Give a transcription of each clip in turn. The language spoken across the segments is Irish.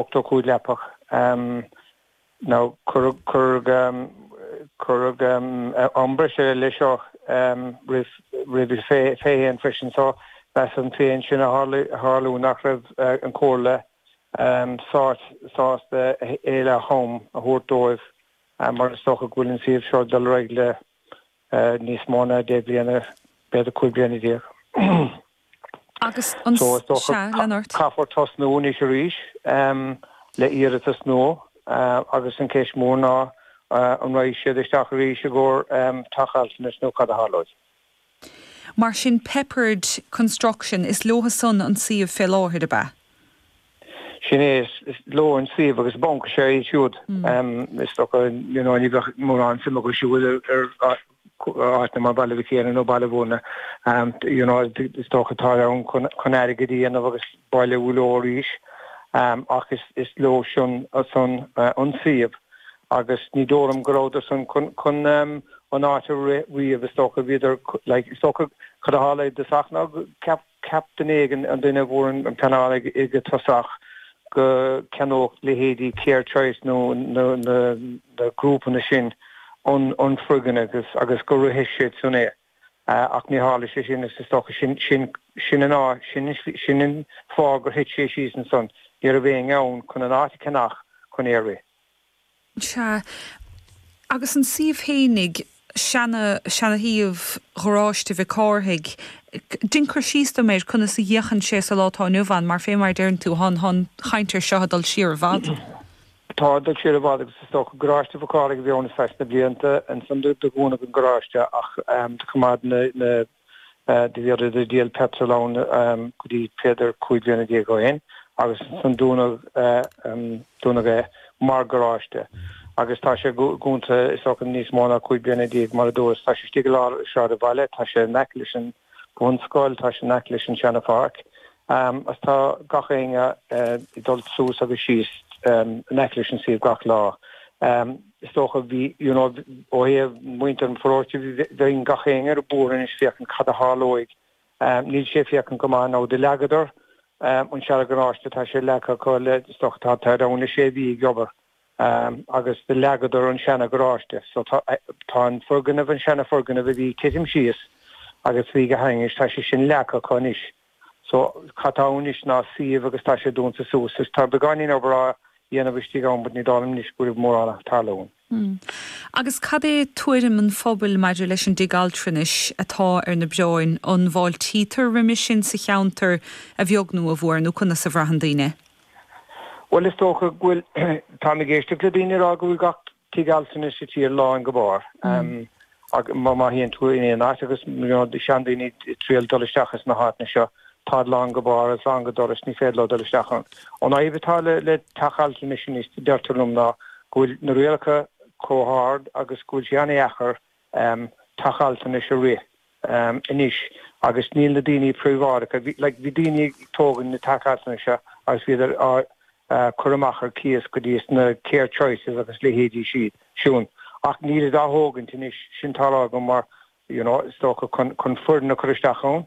85 leapach nó cuireadh am breise ar leith seo roimis fé choinne freisin so muran féidir é sin a tharlú nach raibh an Chomhairle sásta a thuilleadh am a thabhairt dóibh mar is dócha go bhfuil an suíomh seo ag dul ar aghaidh le eh, níos mó ná deich bliana, b'fhéidir cúig bliana déag. Agus an So, is dócha, sea, ca- lean ort. caithfear tosnú anois arís em, le hiarratas nua eh, agus an ceist mór ná eh, an rachaidh siad isteach arís i gcomhair em, teach altranais nó cad a tharlóidh. Mar sin Peppard Construction, is leotha san an suíomh fé láthair, ab ea? Sin é, is leo an suíomh agus banc is ea iad siúd. Is dócha ní bheadh mórán suime acu siúd ar áiteanna mar Bhaile Mhic Éanaigh nó Baile Mhúirne. Is dócha atá ann chun airgead a dhéanamh agus bailiú leo arís ach is leo san an suíomh agus ní dóigh liom go rabhadar san chun an áit a rith riamh. Is dócha bhíodar, like, is dócha, cad a tharla i Sasana? Ceapadh. Cheap duine éigin, an duine a bhfuair an pleanáil i dtosach, go gceannódh leithéidí CareChoice nó na grúpanna sin an foirgneamh agus go rithfeadh siadsan é. Ach níor tharla sé sin agus is dócha sin an fáth gur thit sé síos ansan, ní raibh éinne ann chun an áit a cheannach chun é a rith. Sea, agus an suíomh fhéinigh, seanashuíomh gharáiste Mhic Cárthaigh, dein cur síos dom air, conas a fhéachann sé sa lá atá inniu ann, mar féibh mar a deireann tú, tá an chaint ar seo ag dul siar i bhfad. Tá, ag dul siar i bhfad, agus is dócha garáiste Mhic Cárthaigh a bhí ann sna, sna blianta. Ansan do dúnadh an garáiste ach do choimeád na. do bhíodar ag díol petrol ann go dtí b'fhéidir cúig bliana déag ó shin agus ansan dúnadh, dúnadh é mar garáiste agus tá sé dúnta is dócha níos mó ná cúig bliana déag mar a dúras. Tá sé istigh i lár an tsráidbhaile, tá sé in aice leis an bhunscoil, tá sé in aice leis an seana pháirc. Agus tá gach éinne ag dul suas agus síos in aice leis an suíomh gach lá. Is dócha, bhí, you know, ó thaobh muintir an pharóiste, bíonn gach éinne ar bior anois féachaint cad a tharlóidh. Níl sé féachaint go maith now do leagadar an seana gharáiste, tá sé leagtha acu le stoc, tádar ann le sé mhí ag obair agus do leagadar an seana gharáiste. So tá, tá an foirgneamh, an seana foirgneamh a bhí ag titim síos agus bhí go hainnis, tá sé sin leagtha acu anois. So, cad tá ann anois ná suíomh agus tá sé dúnta suas. Is tá beagáinín obair á dhéanamh istigh ann ach ní dóigh liom anois go bhfuil mórán ag tarlú ann. Hm. Agus cad é tuairim an phobail maidir leis an dtigh altranais atá ar na beartaibh, an bhfáiltítear roimis sin sa cheantar, a bheag nó a mhór, nó conas a bhraitheann daoine? Bhuel is dócha go bhfuil, táim ag éisteacht le daoine ag rá go bhfuil gach Tigh altranais sa tír lán go barr ach má má théann tú in aon áit agus na seandaoine ag triail dul isteach ins na háiteanna seo táid lán go barr is lán go doras ní féidir leo dul isteach ann. An fhadhb atá le le teach altranais anois deirtear liom ná go bhfuil na rialacha chomh hard agus go bhfuil sé an-deacair um, teach altranais a rith um, anois agus níl na daoine príobháideacha, bhí, like, bhí daoine ag tógaint na teach altranais seo agus bhíodar á uh, cur amach ar cíos go dtí sna care choices agus leithéidí siad, siún. Ach nílid á dtógaint anois, sin tarlaithe mar, you know, is dócha, chun, chun foirne a chur isteach ann.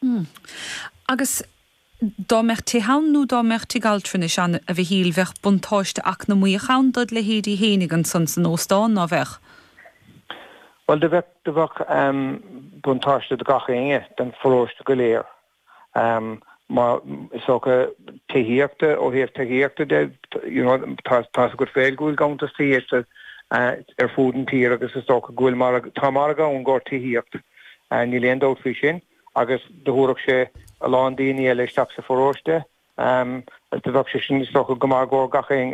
Hmm. Agus dá mbeadh tithe ann nó dá mbeadh tigh altranais ann, a Mhichíl, bheadh buntáiste eacnamaíoch ann dod leithéidí fhéinig ansan san óstán, ná bheadh? Bhuel, do bheadh, do bheadh buntáiste do gach éinne, don pharóiste go léir. Mar is dócha tithíochta, ó thaobh tithíochta de, you know, tá a fhios agat féin go bhfuil ganntanas tithíochta ar fud an tír agus is dócha go bhfuil margadh, tá margadh ann i gcomhair tithíocht. Níl aon dabht faoi sin agus do thabharfadh sé a lán daoine eile isteach sa pharóiste agus do bheadh sé sin is dócha go maith i gcomhair gach aon